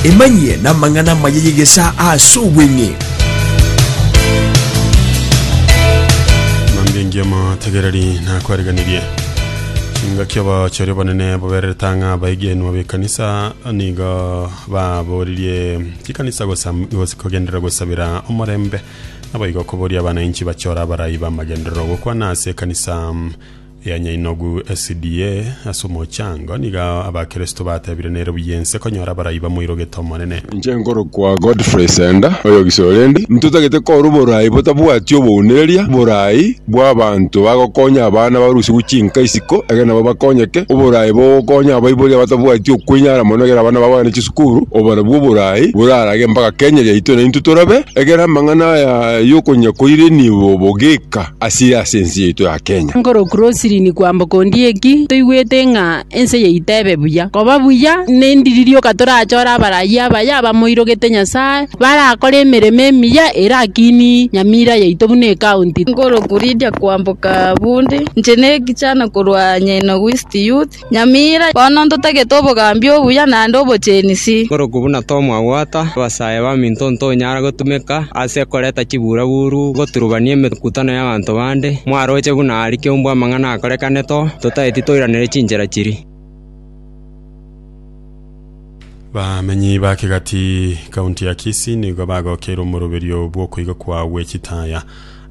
emanyie n'amang'ana amaya y'egesaa ase obweng'e Mambia engiya amategereri nakwariganirie chingaki abachori abanene bobererete ang'a abaigenwa b'ekanisa nigo baboririe chikanisa gosam- gos- kogenderera gosabera omorembe naboigo koboria abana inchi bachora abarai b'amagenderero gokwana ase ekanisa mm, Ya nyainogu SDA, ase omochango nigo abakristo batebire nere buya ense konyora abarai bamoirogete Omonene. Inche nkorokwa Godfrey Senda, oyo Gisorendi. Ntotagete korwa oboraai botabwati obounireria, oboraai bw'abanto bagokonya abana barusigwe chinka isiko ekero nabo bakonyeke, oboraai bogokonya abaibori abatabwati okwenyara mono ekero abana babo bagane chisukuru, obarabwo oboraai borarage mpaka Kenya yaito naintwe torabe ekero amang'ana aya y'okonya koire nigo bogeka. asire ase ense yaito ya Kenya. Nkorokw Roslyn kwamboka Ondieki, toigwete ng'a ense yaito ebe buya. Koba buya nendiri rioka torachore abarayia abaya abamoirogete Nyasaye, barakore emeremo emiya erakinie nyamira yaito buna ecounty. Nkorokw Lydia kwamboka Bundi, inche ne ekichana korwa Nyaino West Youth. Nyamira bono ntotagete obogambi obuya naende obochenisi. Korokwo buna tomwabwata, abasae baminto ntonyara gotumeka ase koreta chibura-buru goturubania emekutano y'abanto bande, mwaroche buna aria kiombe amang'ana akorekanete oo, totaeti toiranere chinchera chiria. Bamenyi ba Kigati, County ya Kisii nigo bagokeirwe omoroberio bw'okoiga kwa gwe chitaya.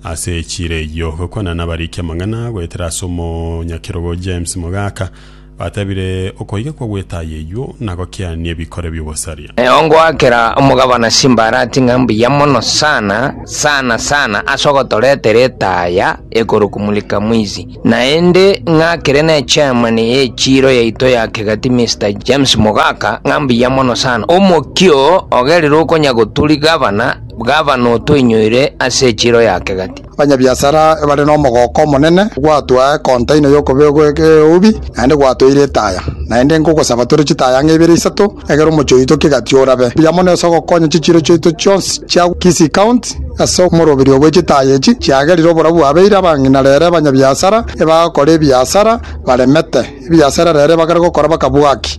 Ase echiira eyio, gokwana nabarikia amang'ana goetera ase omonyakerogo James Mogaka, batebire, Okoiga kwa gwetaya eyuo na gokiania ebikore bi'ogosaria. Ongoakera omogabana chimbarati ng'a mbuya mono sana sana sana ase ogotoretera etaya ekorokumulika mwizi. Naende ng'akere ne chairman ye chiiro yaito ya kegati Mister James Mogaka, ng'a mbuya mono sana. Omokia oo ogerire okonya goturi gavana, gavana otoinyoire ase echiiro ya kegati. Abanyabiasara bare nomogooko omonene, gwatoa ekontaina y'okobegwa egeubi, naende gwatoire etaya. Naende nkogosaba tore chitaya ng'a ibere isato, egere omochie oito kegati orabe buya mono ase ogokonya chichiiro chiaito chionsi chia Kisii County ase omoroberio bwe chitaaya echi chiagerire oborabu abeire abang'ina rere abanyabiasara ebagokora ebiasara baremete ebiasara rere ebagare gokora bakabwaki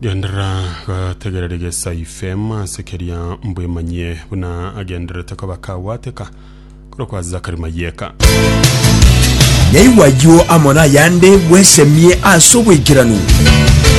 Genderera gotegera rigesa ifm ase keria mbwemanyie buna agendererete koba kagwateka korokwa ase Zakari Mayeka. Naigwa ayio amo nayande bwesemie ase obwaikeranu.